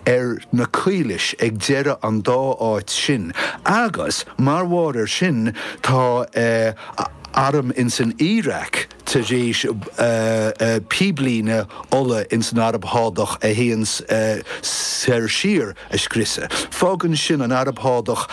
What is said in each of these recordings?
ar na caolais ag deireadh an dá áit sin agus mar bharr ar sin tá a arm ins an Iaráic tar éis píblíne ola ins an Araib Shádach a théann soir siar a scriosadh. Fágann sin an Araib Shádach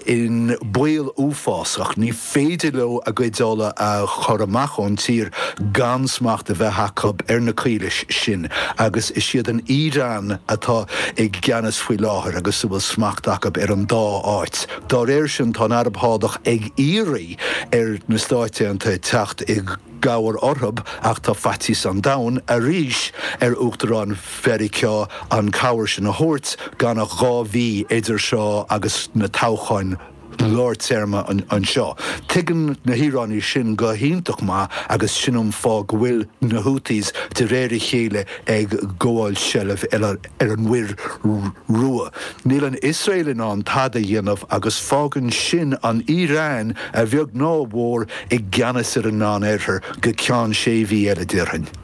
i mbaol uafásach. Ní. féidir leo a gcuid ola a chur amach ón tír gan smacht a bheith acu ar na caolais sin, agus is iad an Iaráin atá i gceannas faoi láthair agus a bhfuil smacht acu ar an dá áit. Dá réir sin, tá an Araib Shádach ag iarraidh ar na Stáit Aontaithe teacht i gcabhair orthu, ach tá faitíos an domhain arís ar Uachtarán Mheiriceá an chabhair sin a thabhairt gan ach dhá mhí idir seo agus na toghcháin. lár téarma anseo. Tuigeann na hIaránaigh sin go hiontach maith agus sin an fáth go bhfuil na Houthis de réir a chéile ag gabháil seilbh ar an Mhuir Rua. Níl an Iosrael in ann tada a dhéanamh agus fágann sin an Iaráin, a bheag nó a mhór, i gceannas ar an Meán-Oirthear go ceann sé mhí eile, déarfainn.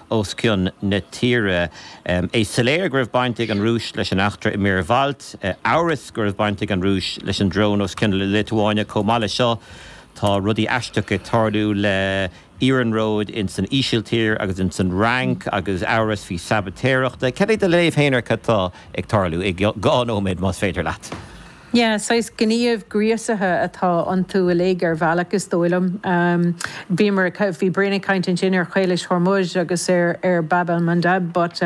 os cionn na tíre. É soiléir go raibh baint ag an Rúis leis an eachtra i Muir Bhailt, amhras go raibh baint ag an Rúis leis an drón os cionn na Liotuáine. Chomh maith le seo tá rudaí aisteach ag tarlú le iarnróid ins an Ísiltír agus ins an Fhrainc agus amhras faoi shabaitéireacht. Cad é do léamh féin ar cad tá ag tarlú i dhá nóiméad más féidir leat. Yeah, saghas gníomh gríosaithe atá iontu uilig ar bhealach is dóigh liom. Bhíomar ag, bhí Brian ag caint ansin ar Chaolais Hormuz agus ar ar Bab el Mandeb but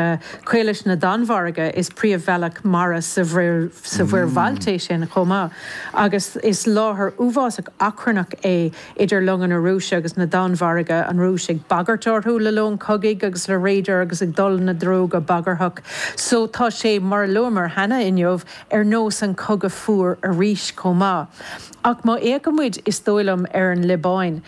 Caolais na Danmhairge is príomhbhealach mara sa Mhuir, sa Mhuir Bhailt é sin chomh maith agus is láthair uafásach achrannach é idir longa na Rúise agus na Danmhairge, an Rúis ag bagairt orthu le lón cogaidh agus le radair agus ag dul ina dtreo go bagarthach. So tá sé, mar a luamar cheana inniu, ar nós An Cogadh Fuar arís chomh maith. Ach má fhéachann muid, is dóigh liom, ar an Liobáin,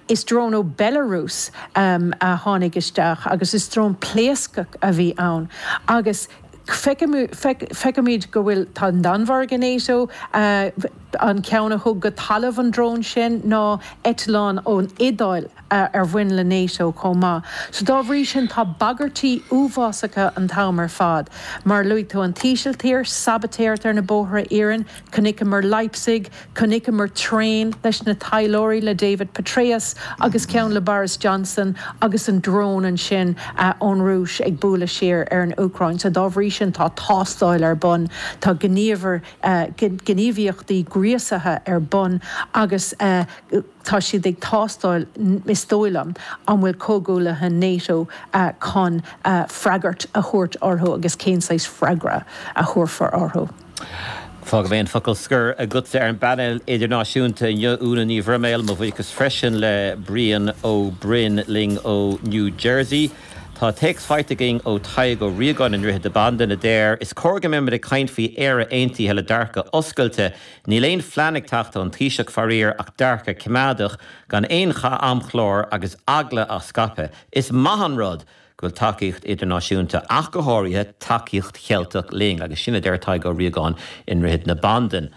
is drón ó Belarus a tháinig isteach agus is drón pléascach a bhí ann. Agus feicimid go bhfuil, tá an Danmhairg i Nato, an ceann a thug go talamh an drón sin ná eitleán ón Iodáil. ar bhain le NATO chomh maith. So dá bhrí sin tá bagairtí uafásacha an t-am ar fad. Mar a luaigh tú, an t-Ísiltír, sabaitéireacht ar na bóithre iarainn, chonaiceamar Leipzig, chonaiceamar traein leis na taidhleoirí le David Petraeus agus ceann le Boris Johnson agus an drón ansin ón Rúis ag bualadh siar ar an Úcráin. So dá bhrí sin tá tástáil ar bun, tá gníomhar gníomhaíochtaí gríosaithe ar bun agus Tá siad ag tástáil, is dóigh liom, an bhfuil comhghuaillithe Nato chun freagairt a thabhairt orthu agus cén saghas freagra a thabharfar orthu. Fágfaidh mé an focal scoir agatsa ar an bpainéal idirnáisiúnta inniu, Úna Ní Bhroiméil. Mo bhuíochas freisin le Brian Ó Broin linn ó New Jersey. Tá téacs faighte againn ó Tadhg Ó Riagáin i nDroichead na Bandan a deir, Is cóir go mbeimid ag caint faoi Éire Aontaithe le dearcadh oscailte, Níl aon phlean ag teacht ón Taoiseach, faraor, ach dearcadh coimeádach gan aon chaint ar amchlár agus eagla á scaipeadh. Is maith an rud go bhfuil tacaíocht idirnáisiúnta, ach go háirithe tacaíocht Cheilteach linn, agus sin a deir Tadhg Ó Riagáin i nDroichead na Bandan.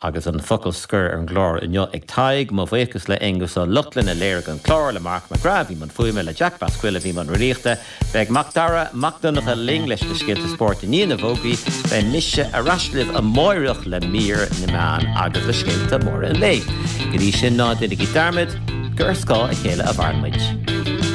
Agus an focal scoir ar an gclár inniu ag Tadhg, mo bhuíochas le Aonghus Ó Lochlainn a léirigh an clár, le Mark McGrath a bhí mbun fuaime, le Jack Basquill a bhí mbun riaracháin, Beidh Macdara Mac Donncha linn leis na scéalta spóirt i ndiaidh na bhfógraí. Beidh mise ar ais libh amáireach le Mír na Meán agus le scéalta móra an lae. Go dtí sin, ná déanaigí dearmad gur ar scáth a chéile a mhaireann muid.